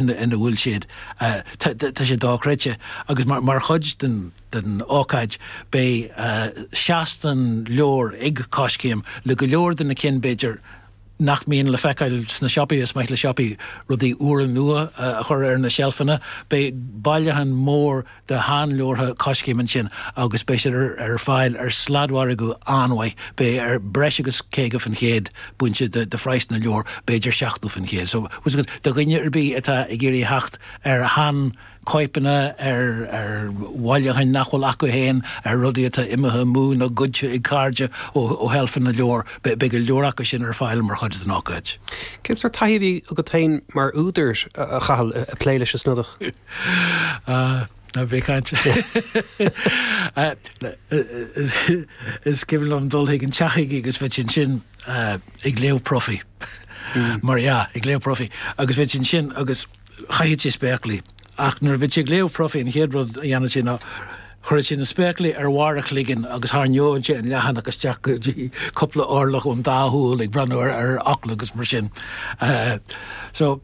ina bhfuil siad. Tá sé dochreidte agus mar chuid den ócáid beidh seastán leabhar ag Coiscéim le go leor de na cinn b'fhéidir nach mbíonn le feiceáil sna siopaí. Is maith le siopaí rudaí úra nua a chur ar na seilfeanna. Beidh bailiúchán mór. de shean-leabhartha Coiscéim ansin agus beidh siad ar fáil ar sladmhargadh an-mhaith, beidh ar breis agus 50 faoin gcéad bainte de phraghas na leabhar, b'fhéidir 70 faoin gcéad. So, once again, do dhuine ar bith atá ag iarraidh a theacht ar shean-chóipeanna, ar bhailiúcháin nach bhfuil acu féin, ar rudaí atá imithe amú nó goidte ag cairde ó sheilfeanna na leabhar, beidh go leor acu sin ar fáil mar chuid den ócáid. Cén sórt taithí a bhí agat féin mar údar, a Chathail, ag plé leis an Snodach? Ná bí cainte. Is cuimhin liom dul chuig an teach chuige agus bheadh sé ansin ag léamh profaí. Mar dhea, ag léamh profaí. Agus bheadh sé ansin agus chaitheadh sé spéaclaí. Ach nuair a bhí sé ag léamh profaí an chéad rud a dhéanfadh sé ná chuireadh sé na spéaclaí ar bharr a chloiginn agus tharraingeodh sé an leathanach isteach go dtí cúpla orlach ón dá shúil ag breathnú ar fhocla agus mar sin. So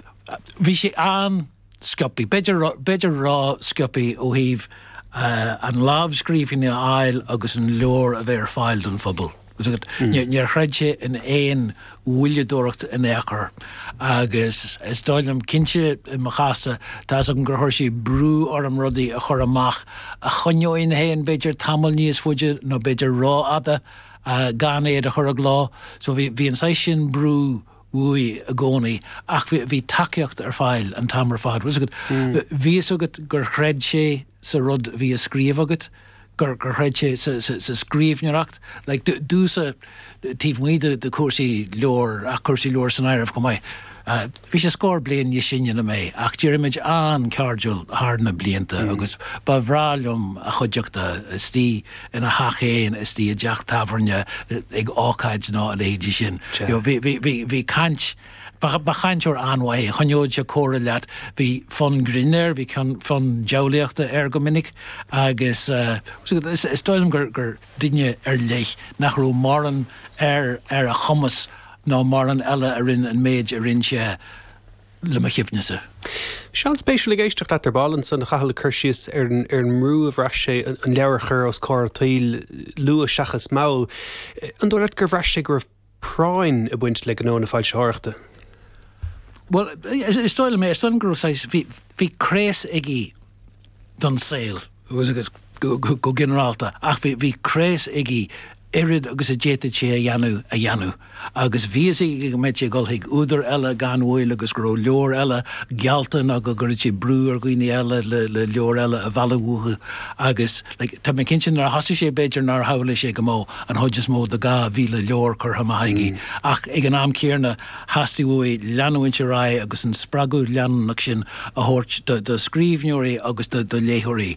bhí sé an. sciopaí. B'fhéidir a rá sciopaí ó thaobh an lámhscríbhinn a fháil agus an leabhar a bheith ar fáil don phobal. Níor chreid sé in aon mhoilleadóireacht in aon chor agus is dóigh liom, cinnte i mo chás-sa, tá's agam gur chuir sé brú orm rudaí a chur amach a choinneoinn féin b'fhéidir tamall níos faide nó b'fhéidir rófhada gan iad a chur i gcló. So bhí an saghas sin brú. uaidh i gcónaí ach bhí tacaíocht ar fáil an t-am ar fad. Bhfuil fhios agat, bhí fhios agat gur chreid sé sa rud a bhí a scríobh agat, gur chreid sé sa scríbhneoireacht, like domsa, taobh amuigh de chúrsaí leabhar ach cúrsaí leabhar san áireamh chomh maith. Bhí sé scór bliain níos sine ná mé ach d'éirigh muid an-chairdiúil thar na blianta agus ba bhreá liom a chuideachta, istigh, ina theach fhéin nó i dteach tábhairne ag ócáid nó a leithéidí sin. Bhí caint, ba chainteoir an-mhaith é, choinneodh sé comhrá leat, bhí fonn grinn air, bhí fonn diabhlaíochta air go minic agus is dóigh liom gur duine ar leith nach raibh mórán ar a chumas ná mórán eile a rinn an méid a rinn sé. le mo chuimhne-sa. Bhí sé an-spéisiúil ag éisteacht leat ar ball ansan, a Chathail, ag cur síos ar an mbrú a bhraith sé an leabhar a chur os comhair an tsaoil, luath seachas mall. An dóigh leat gur bhraith sé go raibh práinn ag baint le gnó na foilsitheoireachta? Bhuel, is dóigh liom é. Is dóigh liom go raibh saghas, bhí craos ag. don saol agus agus go ginearálta ach bhí bhí craos aige oiread agus a d'fhéadfadh sé a dhéanamh a dhéanamh agus bhí fhios aige go mbeadh sé ag dul chuig údar eile gan mhoill agus go raibh leabhar eile geallta nó go gcuirfead sé brú ar dhaoine eile le le leabhar eile a mhealladh uathu agus like tá mé cinnte nuair a thosaigh sé b'fhéidir nár shamhlaigh sé go mbeadh an chuid is mó de 2000 leabhar curtha amach aige ach ag an am céanna Theastaigh uaidh leanúint ar aghaidh agus an spreagadh leanúnach sin a thabhairt do scríbhneoirí agus do léitheoirí.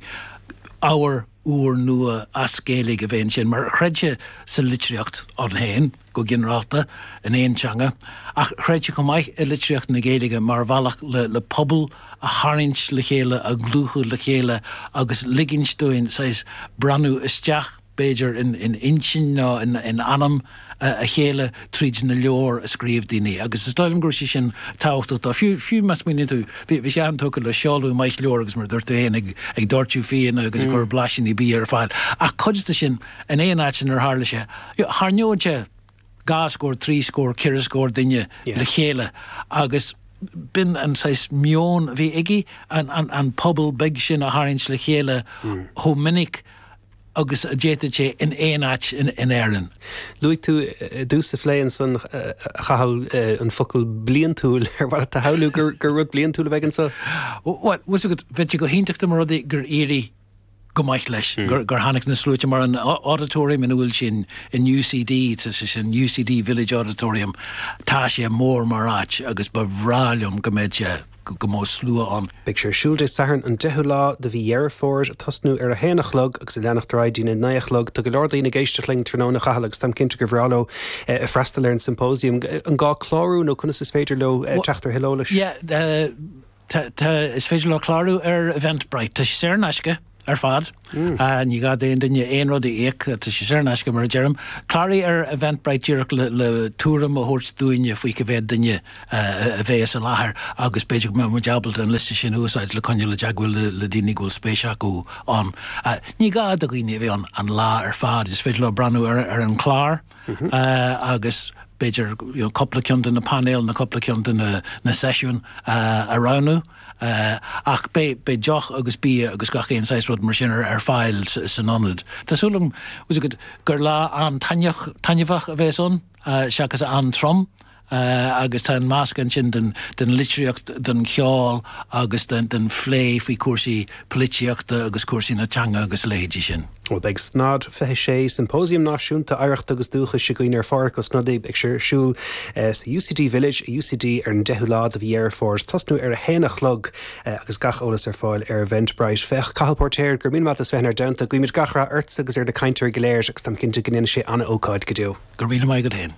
ábhar úr nua as Gaeilge a bheith ann mar chreid sé sa litríocht inti féin go ginearálta, in aon teanga, ach chreid sé chomh maith i litríocht na Gaeilge mar bhealach le pobal a tharraingt le chéile, a dhlúthú le chéile agus ligint dúinn saghas breathnú isteach b'fhéidir, in intinn nó in anam a chéile tríd na leabhair a scríobh daoine agus is dóigh liom go raibh sé sin tábhachtach dó. Fiú, fiú má smaoiníonn tú, bhí, bhí sé an-tógtha le seoladh maith leabhar agus mar a dúirt tú féin, ag, ag doirteadh fíona agus ag cur blaisíní bia ar fáil. Ach cuid de sin, in aon áit inar tharla sé, tharraingeodh sé dhá scór, trí scór, ceithre scór duine le chéile agus b'in an saghas meon a bhí aige, an, an, an pobal beag sin a tharraingt le chéile chomh minic. agus a d'fhéadfadh sé in aon áit in Éirinn. Luaigh tú i dtús an phlé ansan, a Chathail, an focal 'bliantúil'. Ar mhaith leat a shamhlú gur rud bliantúil a bheidh anseo? Bhuel, bhfuil 's agat, bheadh sé go hiontach dá mba rud é gur éirigh go maith leis, gur tháinig na sluaite mar an Auditorium ina bhfuil sé in UCD, is é sin UCD Village Auditorium, tá sé mór mar áit agus ba bhreá liom go mbeadh sé, go mbeidh slua ann. Beidh sé ar siúl Dé Sathairn an 10ú lá de mhí Dheireadh Fómhair, ag tosnú ar a haon a chlog agus ag leanacht ar aghaidh dtí'n a naoi a chlog. Tá go leor daoine ag éisteacht linn tráthnóna, a Chathail, agus táim cinnte gur bhreá leo freastal ar an symposium. An gá clárú nó conas is féidir leo teacht ar thuilleadh eolais? Yeah, tá, tá, is féidir leo clárú ar Eventbrite. Tá sé saor in aisce. ar fad. Ní gá d'aon duine aon rud a íoc, tá sé saor in aisce mar a deirim. Cláraigh ar Eventbrite díreach le tuairim a thabhairt dúinne faoi cé mhéad duine a bhéas i láthair agus b'fhéidir go mbeadh muid ábalta an liosta sin a úsáid le coinneáil i dteagmháil le daoine go bhfuil spéis acu ann. Ní gá do dhaoine a bheith ann an lá ar fad, is féidir leo breathnú ar an chlár agus b'fhéidir cúpla ceann de na painéil nó cúpla ceann de na seisiúin a roghnú. Ach beidh deoch agus bia agus gach aon saghas rud mar sin ar fáil san ionad. Tá súil agam gur lá an-taitneamhach, taitneamhach a bheas ann, seachas an-trom. Agus tá an meascán sin den litríocht, den cheol agus den phlé faoi chúrsaí poilitíochta agus cúrsaí na teanga agus a leithéidí sin. Beidh SNOD 26, Siompóisiam Náisiúnta Oidhreachta agus Dúchais againn ar Phádraig Ó Snodaigh agus é ar siúl sa UCD Village, UCD ar an 10ú lá de mhí Dheireadh Fómhair ag tosnú ar a haon a chlog agus gach eolas ar fáil ar Eventbrite. Féach, Cathal Póirtéir, gura míle maith as bheith inár dteannta. Guímid gach rath ortsa agus ar na cainteoirí go léir agus táim cinnte go ndéanfaidh sé an-ócáid go deo. Go raibh míle maith agat fhéin.